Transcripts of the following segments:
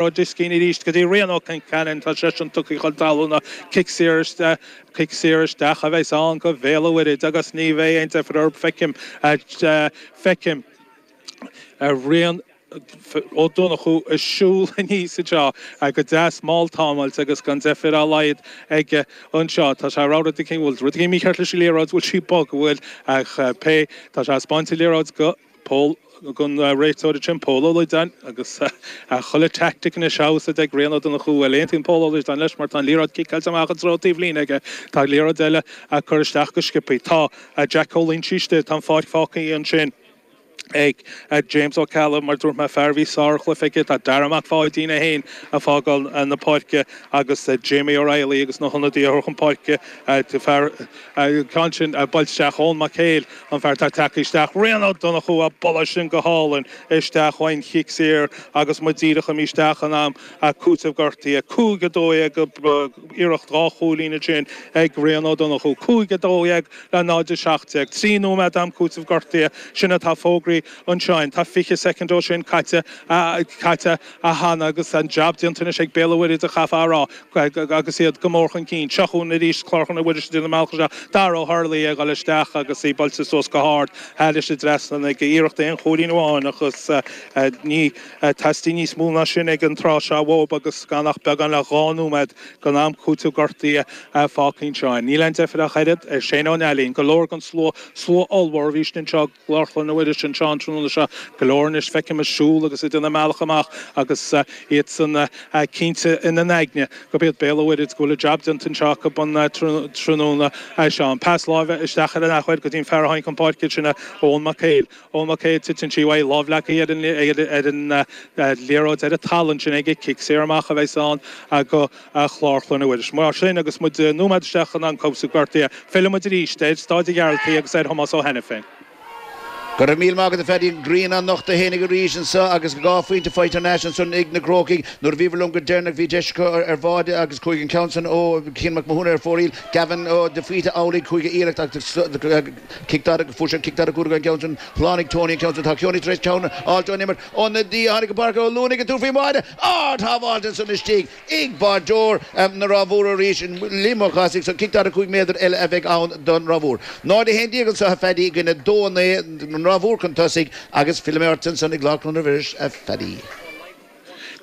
Rug Diskin arís go dtí Rian Ó Concheanainn. Tá seisean tugtha chun talúna. Cic saor isteach. Cic saor isteach a bheas ann go Bhéal a' Mhuirthid agus ní bheidh aon deifir orthu. Feicim, feicim Rian Ó Donnchadha ag siúl aníos anseo go deas mall támáilte agus gan deifir dá laghad aige anseo. Tá sé ag rá rud eicínt, bhfuil rud éigin mícheart leis an liathróid, bhfuil sí bog, bhfuil? Ach pé, tá sé ag spáint an liathróid go. Pól an réiteoir ansin, Pól Ó Loideáin, agus chuile tactic anois in úsáid ag Rian Ó Donnchú. Bhuel, aontaíonn Pól Ó Loideáin leis mar tá an liathróid ciceáilte amach i dtreo taobhlíne aige, tá an liathróid eile á cur isteach go sciopthaí, tá Jack Ó Loingsigh istigh, tá an pháirc fágtha ansin ag James Ó Ceallaigh, mar dúirt mé, fear a bhí sárchluiche aige, tá Darragh Mac Pháidín é féin ag fágáil na páirce agus Jamie O'Reilly agus na hionadaithe á gcur chun páirce, fear acu ansin ag dul isteach Eoin Mac Éil. An fear tá ag teacht isteach, Rian Ó Donnchú, á bualadh sin go hálainn isteach ón gcic saor agus muid díreach imithe isteach in am cúiteamh gortaithe. 5, 12 iarracht dhá chúilín ansin ag Rian Ó Donnchú. 5, 12 le 0, 17. Trí nóiméad d'am cúiteamh gortaithe sin atá fógraithe ansin. Tá 20 soicind de sin caite cheana agus an jab déanta anois ag Béal a' Mhuirthid, chaithfeá a rá agus iad go mór chun cinn. Seo chugainn arís Clár Chlainne Mhuiris ag déanamh a mbealach isteach, Dara Ó hArlaigh ag dul isteach agus í buailte suas go hard, thar an trasnán ag iarracht aon chúilín amháin ach is ní theastaíonn níos mó ná sin ag an tráth seo uathu agus gan ach beagán le dhá nóiméad den am cúiteamh gortaithe fágtha anseo. Níl aon deifir ach oiread, ar Shane Ó Neillín. Go leor den slua, slua ollmhór, a bhí istigh anseo, i gClár Chlainne Mhuiris anseo an tráthnóna seo. Go leor anois feicim ag siúl agus ag déanamh a mbealach amach agus iadsan cinnte ina n-aigne gurb iad Béal an Mhuirthid, go bhfuil a jab déanta anseo acu an tráthnóna seo. An pas láimhe isteach ar an athuair go dtí an fear a tháinig chun páirce, sin é Eoghan Mac Éil. Eoghan Mac Éil, titeann sí uaidh, lámh leagtha ar an liathróid, ar an talamh ansin aige, cic saor amach a bheas ann. go Chlár Chlainne Mhuiris. Mar sin, agus muid nóiméad isteach san am cúiteamh gortaithe, fillfidh muid arís ar Staid an Ghearaltaigh agus ar Thomás Ó hAiniféin. Go raibh míle maith agat a Phaddy, an ghrian á nochtadh féinig arís anso agus dhá phointe faighte thar n-ais anso anois ag na Crócaigh. Nuair a bhíomar libh go deireanach bhí deis acu ar bháide agus chuaigh an ceann san ó Cian Mac Mathúna ar fóraoil, Gavin de Faoite amhlaidh chuaigh a iarracht ach fuair siad cic daichead cúig as an gceann san, shlánaigh Tony an ceann san, tá Cian tar éis ceann a fháilt ón imirt. Ionadaí a tháinig go Páirc Átha Luain ag an tús faoi mhaide ard-shábháil ansan istigh, ag báireoir na Ráth Mhór arís in Liam Ó Cathasaigh is cic 45 méadar eile a bheidh ann don Ráth Mhór. 0, 11 anseo a Phaddy i gcoinne 2, 9 don Ráth Mhór chun tosaigh agus fillfidh mé ort ansan i gClár Chlainne Mhuiris a Phaddy.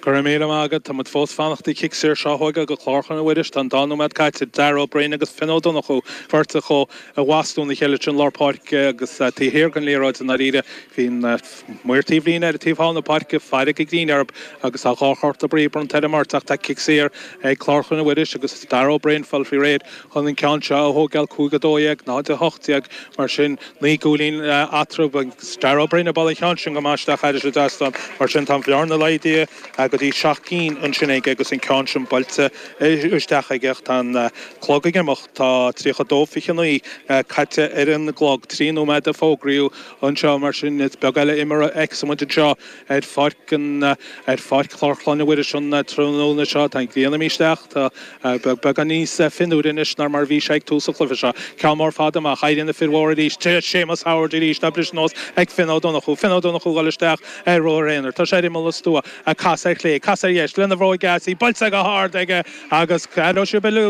Go raibh míle maith agat. Tá muid fós ag fanacht ag cic saor seo chugainn go Clár Chlainne Mhuiris, tá an dá nóiméad caite, Darragh Ó Braoin agus Finn Ó Donnchú, beirt acu i bhfastó ina chéile ansin i lár páirce agus taobh thiar den liathróid i ndáiríre. Bhí an. Maor taobhlíne ar an taobh thall na páirce, fearg a gcinn air agus tá dhá chárta buí bronnta ar an mbeirt ach tá cic saor ag Clár Chlainne Mhuiris agus Darragh Ó Broin ag fáil faoi réir chun an ceann seo a thóigeáil, 5 12, 0 18 mar sin, naoi gcúilín eatarthu agus Darragh Ó Broin ag bualadh an cheann sin go maith isteach thairis an trasnán mar sin tá an bhearna laghdaithe go dtí seacht gcinn ansin aige agus an ceann sin buailte isteach aige ach tá an clog ag imeacht, tá 32 29 caite ar an gclog, trí nóiméad a fógraíodh. anseo, mar sin is beag eile imirt a fheicfeas muid anseo ar pháirc an, ar pháirc Chlár Chlainne Mhuiris an tráthnóna seo. Tá an ghrian imithe isteach, tá beagán níos fionnuaire anois ná mar a bhí sé ag tús an chluiche seo. Ceann mór fada amach, éiríonn na fir mhóra arís, tréas Séamus Howard arís, á briseadh anuas ag Finn Ó Donnchú, Finn Ó Donnchú ag dul isteach ar ruathar aonair, tá sé ar imeall an stua, cas ar chlé, cas ar dheis, lena bhróig dheas, í buailte go hard aige agus Aileo Sibeli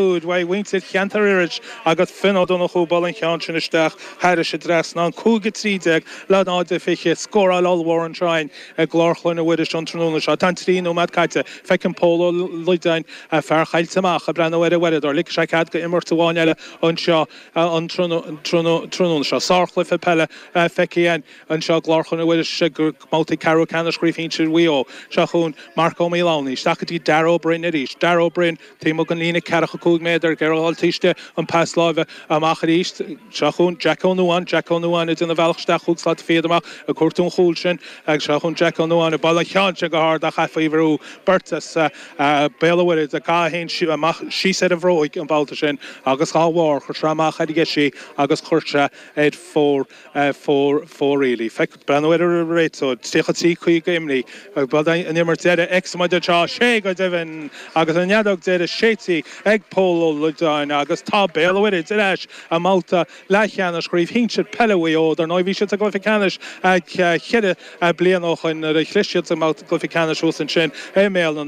Thairis an trasnán, 5:13, le 0:20, scóráil ollmhór anseo againn i gClár Chlainne Mhuiris an tráthnóna seo. Tá an trí nóiméad caite. Feiceann Pól Ó Loideáin, fear Choillte Mach, ag breathnú ar a uaireadóir. Ligfidh sé cead go imirt amháin eile anseo an tráthnóna seo. Sárchluiche peile feicthe againn anseo i gClár Chlainne Mhuiris i mbabhtaí ceathrú ceannais Chraobh Shinsir Mhaigh Eo seo chugainn. Mark Ó Maolánaigh. Isteach go dtí Darragh Ó Broin arís. Darragh Ó Broin. Taobh amuigh den líne ceathracha cúig méadar, ag iarraidh a dhul thairsti, an pas láimhe, amach arís, seo chugainn Jack Ó Nuáin, Jack Ó Nuáin, ag déanamh a bhealach isteach cúig slat fichead amach ag cuartú an chúl sin, agus seo chugainn Jack Ó Nuáin ag bualadh an cheann sin go hard ach é faoi bhrú beirt as Béal an Mhuirthead á gcaitheamh fhéin amach síos ar an bhróig an babhta sin agus dhá bharr cuirtear amach ar dheis í agus cuirtear ar fóir. fóir, fóraoil í. Ag breathnú ar an réiteoir, 33 50 imithe, ab in an imirt deiridh a fheicfeas muid anseo, tá sé go deimhin agus an fheadóg deiridh séidte ag Pól Ó Loideáin agus tá Béal an Mhuirthid ar ais i mbabhta leathcheannais chraobh shinsir peile Mhaigh Eo dar ndóigh bhí siad sa gcluiche ceannais ceithre bliana ó shoin nuair a chlis siad sa gcluiche ceannais thuas ansin i mBéal an